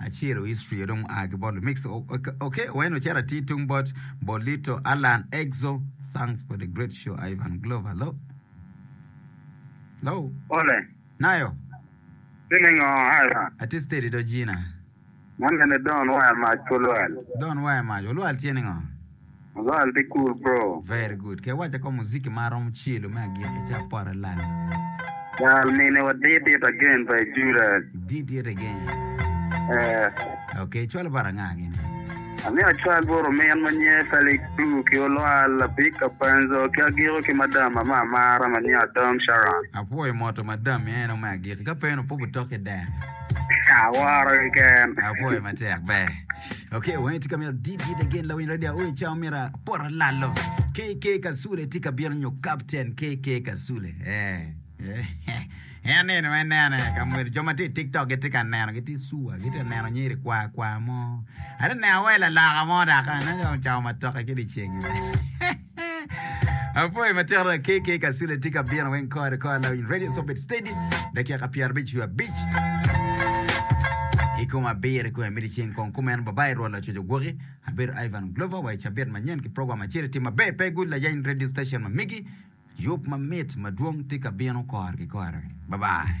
Aciro history dong oa ki bot Limix ok wene ocito atir tung bot Bolito Allan Exo thanks for the great show Ivan Glover lo lo Ole. nayo Timi ngo Ivan? atir steady do Gina Man ene Don Waya Mac olwal. Don Waya Mac olwal tye ni ngo? Lwal pe cool bro. Very good. Ke waca ko muziki ma aromo celo me agiki ci apore lala. Cal mine wa dit dit again pa i Judas. Dit dit again. Eh. Okay, cwalo bara nga gini? Amiyo acwal boro min ma nye Felix Blue ki Olwal Lapik Kapenzo ki agiko ki madam ma ma amara ma nye Adom Sharon. Apwoyo moto madam mi eno me agiki ka pe eno poko tok idek. Aworo keken. Apwoyo matek ber. Okay, weng tye ka mito dit dit again lawiny radio aoi cao mira pora lalo. KK Kasule tye ka bino nyo Captain KK Kasule. Eh. En nino en nene ka mwelo jo ma tye i TikTok gitye ka neno gitye sua gitye ka neno nyiri kwa kwa mo. Ate neno wa i lalaka mo daka ne cao matoka ki diceng. Apoyo matera KK Kasule tye ka bino weng kore kore lawiny radio so bed steady dakika pyero abic wiye abic i kom abiro kong emiti ceng kong kumeno babai rwol lacoco gwoki abedo Ivan Glover wa i cabit manyen ki program acel i tim maber pe good layany radio station ma migi yub mamit madwong tye ka bino kore ki kore babai